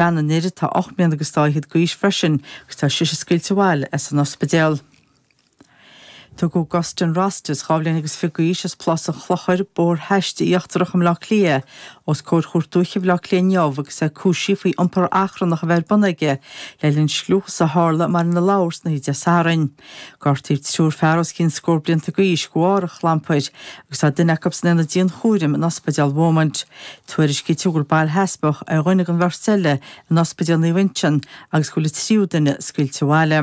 Bean an fhir atá ocht mbliana agus dá fhichead d'aois freisin agus tá sise scaoilte abhaile as an ospidéal. Tugadh Augustin Rostas, dhá bhliain agus fiche d'aois, as Plás an Chlochair, Bóthar Haiste Íochtarach i mBleá Cliath, os comhair Chúirt Dúiche Bhleá Cliath inniu agus é cúisithe faoi iompar achrannach a bheith ar bun aige le linn scliúchas a tharla i mBaile na Lobhar san oíche Dé Sathairn. Gortaíodh triúr fear os cionn scór blianta d'aois go bharr an chlampair agus tá duine acu san aonad dianchúraim in Ospidéal Beaumont. Tuairiscítear gur bail sheasmhach ar dhuine den bheirt eile in Ospidéal Naomh Uinseann agus go bhfuil an tríú duine scaoilte abhaile.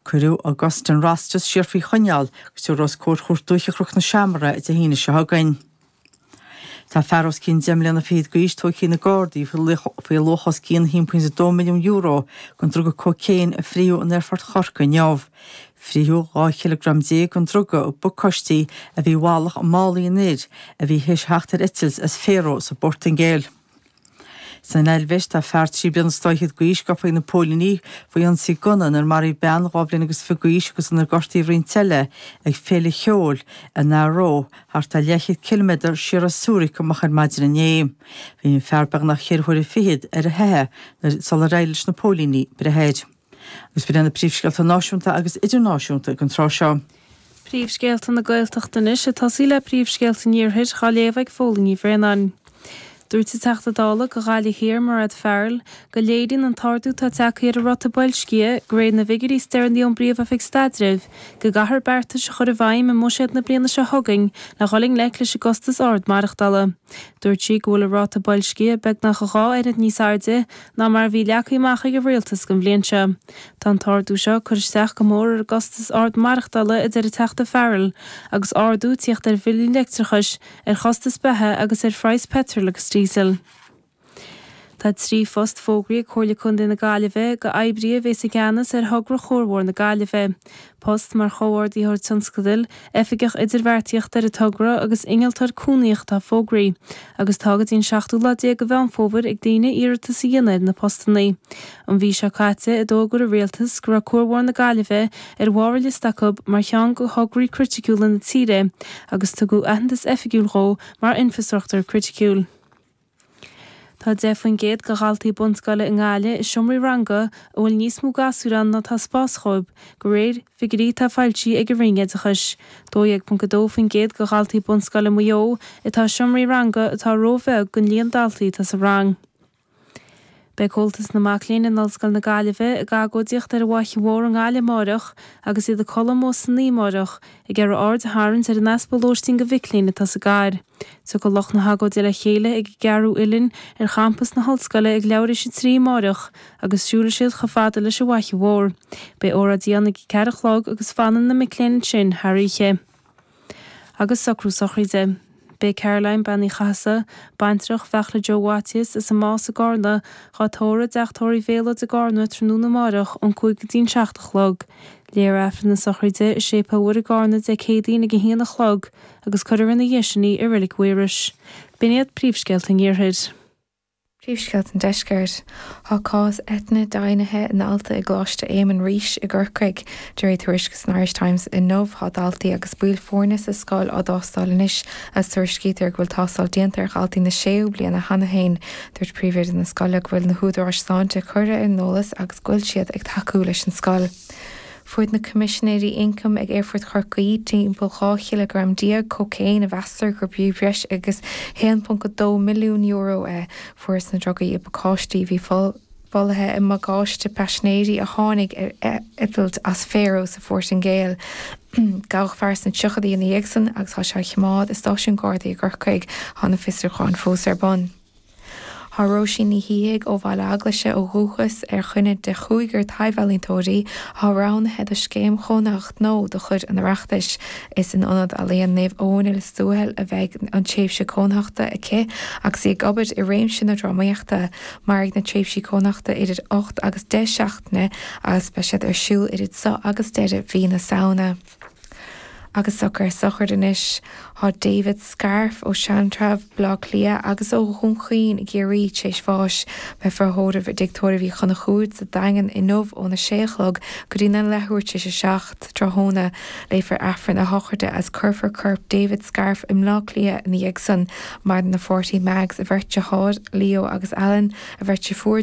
Cuireadh Augustin Rostas siar faoi choinneáil go dtabharfar os comhair Chúirt Dúiche Chnoc na Seamar é Dé hAoine seo chugainn. Tá fear os cionn deich mbliana fichead d'aois tóigthe ag na Gardaí faoi luach os cionn €1.2 milliún den druga cócaon a frítheadh in Aerfort Chorcaí inniu. Frítheadh 12 cileagram den druga i bpacáistí a bhí i bhfalach i málaí an fhir a bhí tar éis theacht ar eitilt as Faro sa bPortaingéil. San Eilvéis, tá fear trí bliana is dá fhichead d'aois gafa ag na póilíní faoi ionsaí gunna inar maraíodh bean dhá bhliain agus fiche d'aois agus inar gortaíodh roinnt eile ag féile cheoil in Aarau, thart ar leathchéad ciliméadar siar as Zurich, amach ar maidin inné. Bhí an fear beagnach ceithre huaire fichead ar a theitheadh sular éirigh leis na póilíní breith air. Agus b'in iad na príomhscéalta náisiúnta agus idirnáisiúnta don tráth seo. Príomhscéalta na Gaeltachta anois. Ag tosaí le príomhscéalta an Iarthair, á léamh ag Fódhla Ní Bhraonáin. Dúirt an Teachta Dála go Ghaillimh Thiar Mairéad Farrell go léiríonn an t-ardú atá teagtha ar an ráta boilscithe go réir na bhfigiúirí is deireanaí ón bPríomhoifig Staidrimh go gcaithfear beartais a chur i bhfeidhm i mbuiséad na bliana seo chugainn le dhul i ngleic leis an gcostas ard maireachtala. Dúirt sí go bhfuil an ráta boilscithe beagnach dhá oiread níos airde ná mar a bhí leagtha amach ag an rialtas don bhliain seo. Tá an t-ardú seo ag cur isteach go mór ar an gcostas ard maireachtála, a deir an Teachta Farrell, agus ardú tíocht ar bhillí leictreachais, ar chostais beatha agus ar phraghas peitril agus díosail. Tá trí phost fógraithe ag Comhairle Contae na Gaillimhe go oibrithe a bhéas i gceannas ar thogra Chuarbhóthar na Gaillimhe. post mar Chomhordaitheoir Tionscadail, Oifigeach Idirbheartaíochta ar an togra agus Innealtóir Cónaitheach atá fógraithe agus tá go dtí an seachtú lá déag de Mheán Fómhair ag daoine iarratas a dhéanamh ar na postanna. An mhí seo caite a d'fhógair an Rialtas go raibh Cuarbhóthar na Gaillimhe ar bharr a liosta acu mar cheann de thograí criticiúla na tíre agus tugadh aitheantas oifigiúil dhó mar infreastruchtúr criticiúil. Tá 10% de dhaltaí bunscoile i nGaillimh i seomraí ranga a bhfuil níos mó gasúir ann ná atá spás dhóib, go réir figiúirí atá foilsithe ag an Roinn Oideachais. 12.2% de dhaltaí bunscoile Maigh Eo atá i seomraí ranga atá róbheag don líon daltaí atá sa rang. Beidh Comhaltas na Mac Léinn in Ollscoil na Gaillimhe ag agóidíocht ar an bhFaiche Mhór i nGaillimh amárach agus iad ag codladh amuigh san oíche amárach ag iarraidh aird a tharraingt ar an easpa lóistín do mhic léinn atá sa gcathair. Tiocfaidh lucht na hagóide le chéile ag an gCeathrú Uillinn ar champas na hollscoile ag leathuair tar éis a trí amárach agus siúlfaidh siad chomh fada leis an bhFaiche Mhór. Beidh óráidí ann ag a ceathair a chlog agus fanfaidh na mic léinn ansin thar oíche. agus socrú sochraide. Beidh Caroline, Bean Uí Chathasaigh, baintreach Bheartla Joe Mhaitiais, as an Más i gCarna, dhá tórramh i dTeach Tórraimh Mylotte i gCarna tráthnóna amáireach ón cúig go dtí'n seacht a chlog. Léifear Aifreann na sochraide i Séipéal Mhuire i gCarna Dé Céadaoin ag a haon a chlog agus cuirfear ina dhiaidh sin í i Reilig Mhaírois. B'in iad príomhscéalta an Iarthair. Príomhscéalta an Deiscirt. Tá cás eitinne deimhnithe i ndalta i gColáiste Éamann Rís i gCorcaigh. De réir tuairisce san Irish Times inniu tá daltaí agus baill foirne sa scoil á dtástáil anois agus tuairiscítear go bhfuil tástáil déanta ar dhaltaí na séú bliana cheana féin. Dúirt príomhoide na scoile go bhfuil na húdaráis sláinte curtha ar an eolas agus go bhfuil siad ag tacú leis an scoil. Fuair na Coimisinéirí Ioncaim ag Aerfort Chorcaí timpeall 12 chileagram cócaoin, a meastar gur fiú breis agus €1.2 milliún é. Fuarthas na drugaí i bpacáistí a bhí folaithe i mbagáiste paisinéirí a tháinig ar eitilt as Faro sa Phortaingéil. Gabhadh fear sna tríochaidí ina dhiaidh san agus tá sé á choimeád i Stáisiún Gardaí i gCorcaigh. Tá na fiosrúcháin fós ar bun. Tá Róisín Ní Shíthigh ó Bhaile Eaglaise ó dhúchas ar dhuine de chúigear taibhealaíontóirí atá roghnaithe do scéim chónaitheachta nua de chuid an Oireachtais. Is in Ionad Ealaíon Naomh Eoin i Lios Tuathail a bheidh an tréimhse cónaitheachta aici agus í ag obair i réimse na drámaíochta. Mairfidh na tréimhsí cónaitheachta idir ocht agus deich seachtaine agus beidh siad ar siúl idir seo agus deireadh mhí na Samhna. agus socrú sochraide anois. Tá David Scarf ó Sheantrabh, Bleá Cliath, agus ó Dhún Chaoin i gCiarraí tar éis bháis. Beifear á thórramh i dTigh Tórraimh Uí Chonchúir sa Daingean inniu óna sé a chlog go dtí na leathuair tar éis a seacht tráthnóna. Léifear Aifreann a shochraide agus cuirfear corp David Scarf i mBleá Cliath ina dhiaidh san. Maireann a pháirtí Mags, a bheirt deartháir Leo agus Alan, a bheirt dheirfiúr,